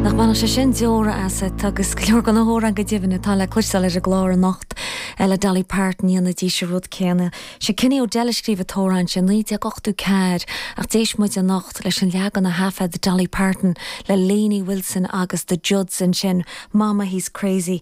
Nach mbainfeadh sé sin deora asat? Agus go leor de na hamhráin go deimhin atá le cloisteáil ar an gclár anocht le Dolly Parton, dhéanfaidís an rud céanna. Sé Kenny O'Dell a scríobh an t-amhrán sin, 1984, ach d'éist muid anocht leis an leagan a thaifead Dolly Parton le Lainey Wilson agus The Judds ansin, Mama he's crazy,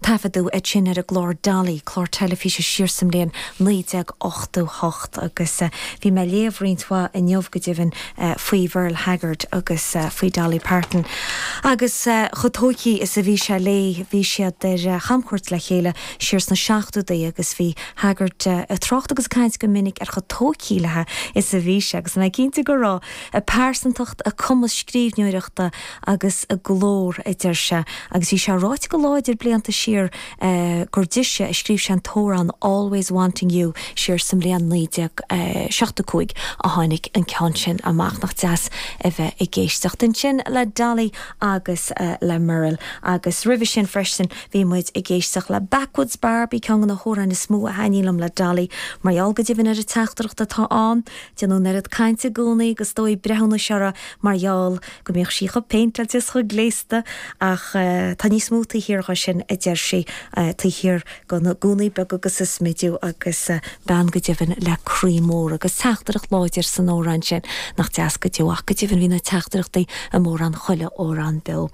Taifeadadh iad sin ar an gclár Dolly, clár teilifíse siar sa mbliain 1988, agus bhí mé ag léamh roinnt mhaith inniu go deimhin faoi Mherle Haggard agus faoi Dolly Parton. Agus chomh tógtha is a bhí sé léi, bhí siad ar chamchuairt le chéile siar sna seachtóidí agus bhí Haggard ag trácht agus ag caint go minic ar chomh tógtha léi is a bhí sé, agus go cinnte go raibh a pearsantacht, a cumas scríbhneoireachta agus a glór, a deir sé, agus bhí sé ráite go láidir blianta siar gur dise a scríobh sé an t-amhrán 'Always Wanting You' siar sa mbliain 1975 a tháinig an ceann sin amach. Nach deas a bheith ag éisteacht ansin le Dolly agus le Merle. Agus roimhe sin freisin bhí muid ag éisteacht le Backwoods Barbie, ceann de na hamhráin is mó a thaitníonn liom le Dolly. Mar gheall go deimhin ar an teachtaireacht atá ann, déanann an oiread cainte i gcónaí agus is dóigh breithiúnas uirthi mar gheall go mbíodh sí chomh péinteáilte is chomh gléasta ach tá níos mó taobh thiar dhó sin, a deir sí, taobh thiar de na gúnaí beaga agus an smidiú agus bean go deimhin le croí mór agus teachtaireacht láidir san amhrán sin nach deas go deo ach go deimhin bhí na teachtaireachtaí i mórán chuile amhrán beo.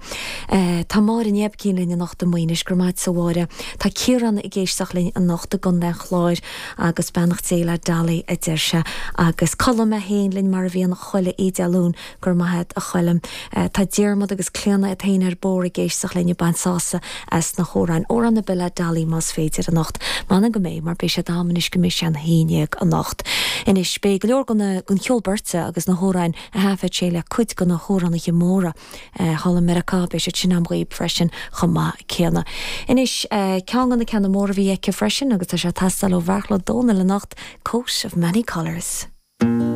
Tá Máire Ní Oibicín linn anocht i Maínis, go raibh maith agat a Mháire. Tá Ciarán ag éisteacht linn anocht i gContae an Chláir agus beannacht Dé le Dolly a deir sé. Agus Colm é féin linn mar a bhíonn chuile oíche Dé Luain Go raibh maith agat, a Choilm. Tá Diarmaid agus Clíona iad féin ar bord ag éisteacht linn ag baint sásamh as na hamhráin, amhrán ar bith le Dolly más féidir anocht. M'anam go mbeidh, mar beidh siad agam anois go mbeidh sé a haon déag anocht. Anois, beidh go leor den cheol beirte agus na hamhráin a thaifead sí le cuid de na hamhránaithe móra thall i Meiriceá, beidh siad sin agam dhaoibh freisin chomh maith céanna. Anois, ceann de na ceanna móra a bhí aici freisin, agus tá sé ag teastáil ó Bheartla Ó Dónaill anocht, Coat of Many Colours.